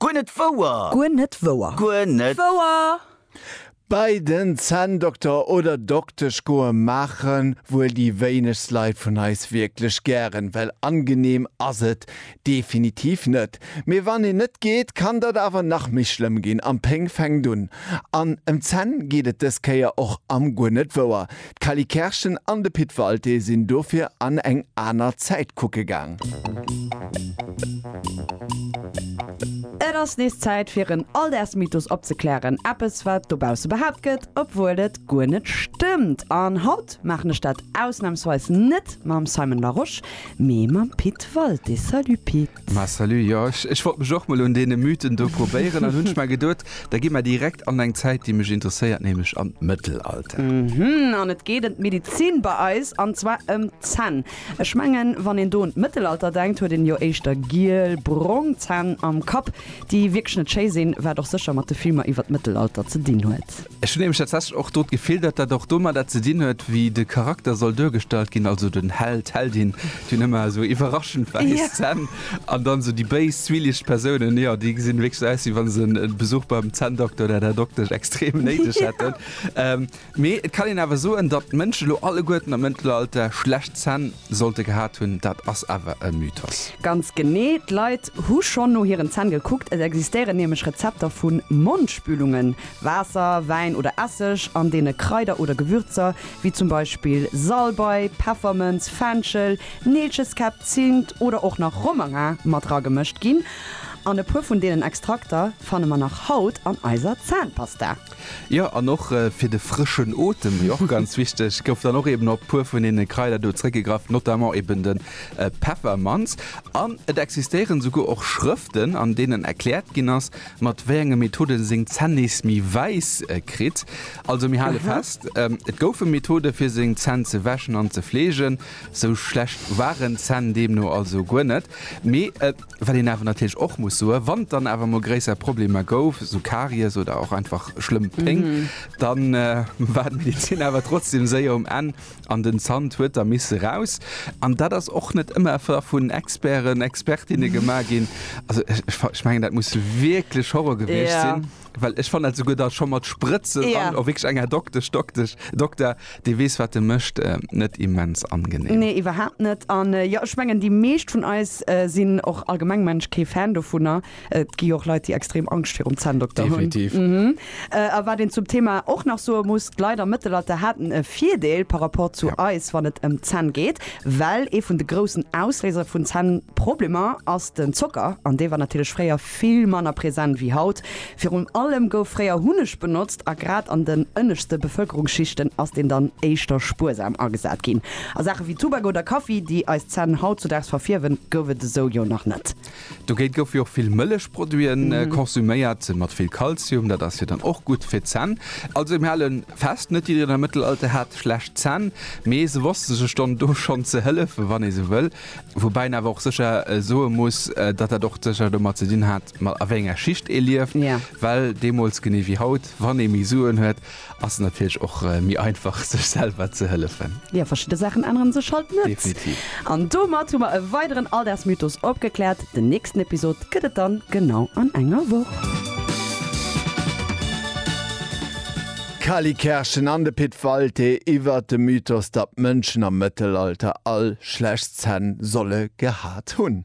Guer net wouer! Guer net wouer! Guer net wouer! Bei den Zänndokter oder Doktesch goe maachen wuel déi wéinegst Leit vun eis wierklech gären, well angeneem ass et definitiv net. Mee wann een net geet, kann dat awer nach méi schlëmm ginn, an d'Péng fänkt un. An ëm d'Zänn geet et dës Kéier och am Guer net wouer. D'Cally Kerschen an de Pit Walté sinn dofir an eng aner Zäit kucke gaang. Et ass nees Zäit fir en Alldagsmythos opzeklären, eppes wat dobausse behaapt gëtt, obwuel et guer net stëmmt. An haut maachen ech dat ausnamsweis net mam Simon Larosche, mee mam Pit Walté. Salut Pit! Ma salut, jo ech wollt mech och mol un deene Mythen do probéieren an hunn mer geduet, da gi mer direkt an eng Zäit déi mech interesséiert, nämlech an d'Mëttelalter. Mhmm, an et geet em d'Medizin bei eis, an zwar em d'Zänn. Ech mengen wann een do un d'Mëttelalter denkt huet een jo éischter giel, brong Zänn am Kapp, déi wierklech net schéi sinn, wat och sécher mat de Filmer iwwer d'Mëttelalter ze dinn huet. Ech hunn nämlech tatsächlech och do d'Gefill, datt dat och domadder ze dinn huet, wéi de Charakter soll duergestallt ginn, also den Held, d'Heldin, déi hunn ëmmer esou iwwerraschend wäiss Zänn, an dann esou déi béis, zwielicht Persounen, jo, déi gesinn wierklech esou aus, wéi wa se e Besuch beim Zänndokter oder der Doktesch extrem néideg hätten. Mee et kann een awer soen, datt d'Mënschen elo alleguerten am Mëttelalter schlecht Zänn. Sollte gehat hunn, dat ass awer e Mythos. Ganz genee, d'Leit hu schonn no hiren Zänn gekuckt. Et existéieren nämlech Rezepter vu Mondspülungen, Waasser, Wäin oder Esseg, an deene Kraider oder Gewürzer wéi zum Beispill Salbei, Peffermënz, Fenchel, Neelcheskäpp, Zimt oder och nach Romarin mat ragemëscht ginn. An e puer vun deenen Extrakter fanne mer nach haut an eiser Zännpasta. Jo, an och fir de frëschen Otem, déi och ganz wichteg, gouf dann och eben op e puer vun deene Kraider do zréckgegraff, notamment eben de Peffermanz. An et existéieren esouguer och Schrëften, an deenen erkläert ginn ass, mat wéi enge Methode en seng Zänn nees méi wäiss kritt. Also mir hale fest, Et goufe Methode fir seng Zänn ze wäschen an ze fleegen. Esou schlecht waren d'Zänn deemno also guer net. Mee Wat een awer natierlech och muss soen, wann et dann awer emol gréisser Problemer gouf, esou Karies oder och einfach schlëmm Péng, da war d'Medezin awer trotzdeem séier um Enn an den Zant huet da misse raus. An dat ass och net ëmmer da vun Experten, Expertinne gemaach ginn. Also ech mengen, dat muss wierklech Horror gewiescht sinn. Well ech fannt dat souguer da scho mat Sprëtzen Ja. an och wierklech enger Doktesch, Doktesch, Dokter, dee weess, wat e mécht, eh, net immens angenehm. Nee, iwwerhaapt net. An jo, ech mengen, déi meescht vun eis sinn och allgemeng Mensch kee Fan dovunner. Et gi jo och Leit, déi extrem Angscht virum Zänndokter hunn. Definitiv. Mhm. A wat een zum Thema och nach soe muss, d'Leit am Mëttelalter haten e Virdeel par rapport zu Ja. eis, wann et ëm d'Zänn geet, well ee vun de groussen Ausléiser vun Zännproblemer ass den Zocker, an dee war natierlech fréier vill manner present wéi haut. Virun allem gouf fréier Hunneg benotzt a grad an den ënneschte Bevëlkerungsschichten ass deen dann éischter spuersam agesat ginn. A Saache wéi Tubak oder Kaffi, déi eis Zänn hautzudaags verfierwen, gouf et esou jo nach net. Dogéint goufe jo och vill Mëllechproduite konsuméiert, mat vill Kalzium, dat ass jo dann och gutt fir d'Zänn. Also mir hale fest, net jiddereen am Mëttelalter hat schlecht Zänn, mee se wosste sech dann do schonn ze hëllefen, wann ee sou wëll. Woubäi een awer och sécher soe muss, datt dat och sécher domat ze dinn hat, ma a wéi enger Schicht ee lieft. Well deemools, genee wéi haut, wann ee méi Suen huet, ass et natierlech och méi einfach, sech selwer ze hëllefen. Jo, verschidde Saachen ännere sech halt net. Definitiv. An domat hu mer e weideren Alldagsmythos opgekläert. Den nächsten Episod gëtt et dann genau an enger Woch. D'Kali Kerschen an de Pit Walté iwwert de Mythos, datt d'Mënschen am Mëttelalter all schlecht Zänn solle gehat hunn.